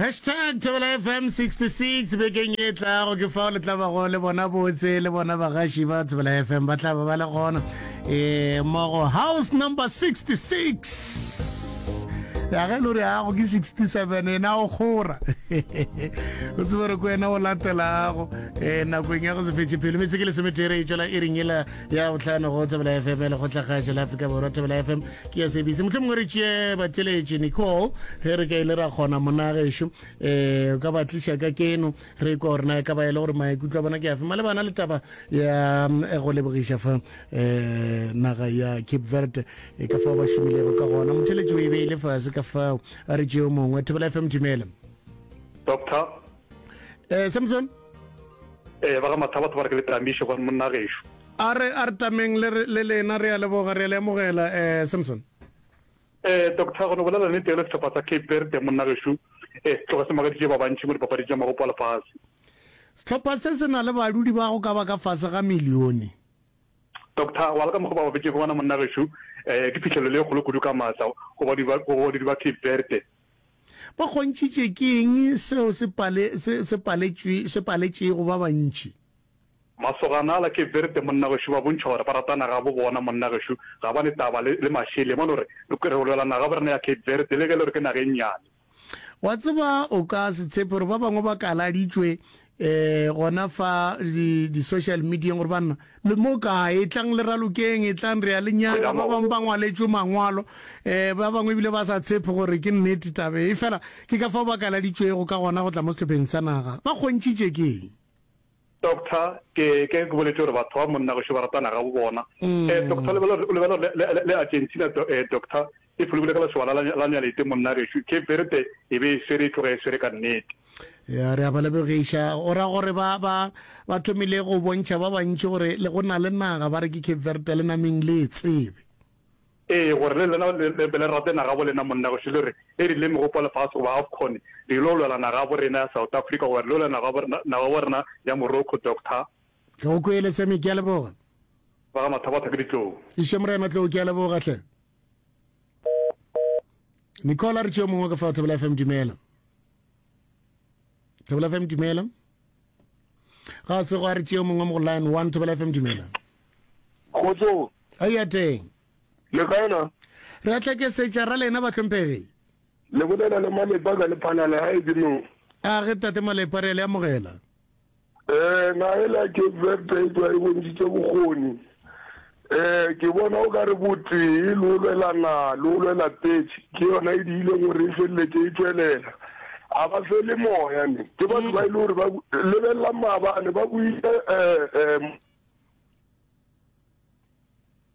Hashtag ThobelaFM 66 Bekeng e tlago ke fao le tla bago le bona botse le bona bagaši ba Thobela FM ba tla ba ba le gona e mogo house number 66 ya ge lori yago ke 67 ena o kgora o tsebere ko wena o latelago um nakong ya go se fetše pelo metse ke lesometere e tšwela e reng ela ya botlhano go tsebela fm le kgotlagašo la afrika borwa tsebela fm ke ya sebise motlho mongwe re tšee batheletše nicole ge re ka ile ra kgona monagešu um eh, o ka ba tliša ka keno re kwa gore na e ka ba e le gore maikutlo a bona ke afe malebana le taba ya mm, eh, go lebogiša fa um naga ya cape verde e ka fao ba šomilego ka gona motheletše o e beile fase ka fao a re tšeo mongwe thebela fm dumela doctor eh samson eh ba ga matha batho ba re ke le tamiše gone monna gešo a re a re tameng le lena re a leboga re a le amogela eh samson eh doctor gone bolela ne tele setlhopha tsa cape verde monna gešo eh tloga se magaditše ba bantšhi mo dipapadi tša magopo a lefase setlhopha se se na le badudi ba go ka ba ka fase ga milione doctor wa le ka mokgwa ba babetšego gona monna gešo um ke phihlelelo e kgolo kudu ka maatla go badudi ba cape verde Ba kgontšhitše ke eng seo se pale, se, se paletšwe, se paletšego ba bantši? Masogana a la Cape Verde, monna gešo, ba bontšha gore ba rata naga ya bo bona. Monna gešo ga ba ne taba le, le mašele. Ba no re, Re, re lwela naga ya bo rena ya Cape Verde, le ge e le gore ke naga e nnyane. Wa tseba, o ka se tshepe gore ba bangwe ba kaladitšwe E, gona fa di, di social medieng gore banna le mo kae e tlang le ralokeng e tlang re ya le nyaka ba bangwe ba ngwaletšwe mangwalo um ba bangwe ebile ba sa tshepe gore ke nnete tabe e fela ke ka fao ba kaladitšwego ka gona go tla mo sehlopheng sa naga ba kgontšitše ke eng doctor ke ke ke boletse gore batho ba monna go šo ba ratana ga bo bona um doctor lebelo lebelo le argentina doctor E fologile ka lesogana la, la Nyalete, monna gešo. Cape Verde e be e swere, e tloga e swere ka nnete. Ya, re a ba lebogiša. O ra gore ba, ba, ba thomile go bontšha ba bantši gore le go na le naga, ba re ke Cape Verde, le nameng le e tsebe. Ee, gore le lena le, le be le rate nagabo lena, monna gešo. Le re, e rile Megopo ya Lefase goba Afcon, le yilo lwela nagabo rena ya South Africa, goba re yilo lwela nagabo rena, nagabo rena ya Morocco, Doctor. Ke go kwele, Sammy. Ke a leboga. Ba ga Mathabatha ke ditlou. Išemorena Tlou, ke a leboga hle. nicole a re tšeo mongwe ka fa thobela fm dumela thobela fm dumela ga se go a re tšeo mongwe mo go line one thobela fm dumela kgotso a ya teng le kaena re a tlakesetša ra lena batlhomphegi le bolela le malepa ka lephalala ga e ke mo a ge tate malepa re a le amogela Ee, naga e le ya Cape Verde e tšwa e bontšhitše bokgoni. Ee, ke bona o ka re botee le go lwela naga le go lwela petše ke yona e diileng gore e feleletše e tšwelela. A ba fele moya ne, ke batho ba e le gore ba lebelelang maabane ba buile um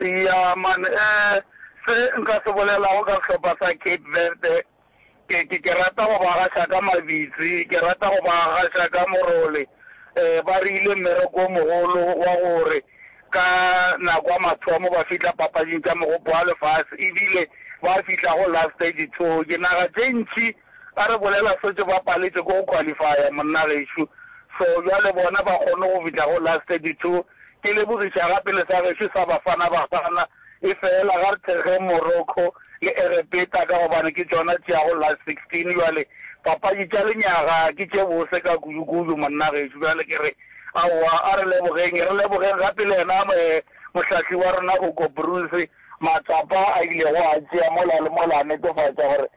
Eya man eh se nka se bolelago ka sehlopha sa Cape Verde ke ke ke rata go ba gaša ka mabitsi ke rata go ba gaša ka morole eh ba re ile mmereko o mogolo wa gore ka nako ya mathomo ba fihla papading tša mogopo wa lefase ebile ba fihla go last ditso dinaga tše ntši Ba re bolela sotše ba paletše ke go qualifya monna gešo so bjale bona ba kgonne go fihla go last 32 ke lebogiša gape le sa gešo sa Bafana Bafana e fela ga re thekgeng Morocco le Egepeta ka gobane ke tšona tše ya go last 16 bjale papadi tša lenyaga ke tše bose ka kudu kudu monna gešo bjale ke re aowa a re lebogeng re lebogeng gape le yena mohlahli wa rona Hugo Broos matsapa a ilego a tšea mola le mola a netefatša gore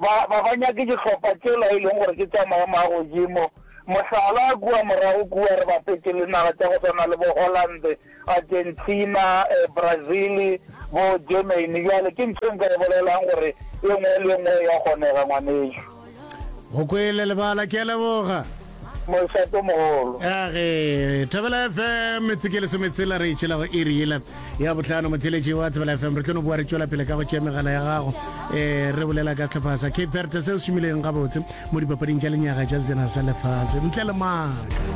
ba ba ba nyake dihlopha tšela e leng gore ke tša maemo a godimo, mohlala, kua morago kua re bapetše le naga tša go swana le bo Holland, Argentina, eh, Brazil, bo Germany, bjale ke ntho e nka e bolelang gore e nngwe le e nngwe ya kgonega ngwanešu. Go kwele lebala, ke a leboga. Mošatomogolo. Eage Thobela FM metse ke lesometshela re itšhela go iri yela ya botlhano motheletši wa Thobela FM re tlo no boa re tšwela pele ka go tšea megala ya gago um re bolela ka tlhopha sa cape verde se se šomileng gabotse mo dipapading tša lenyaga tša sejana sa lefase ntle le maaka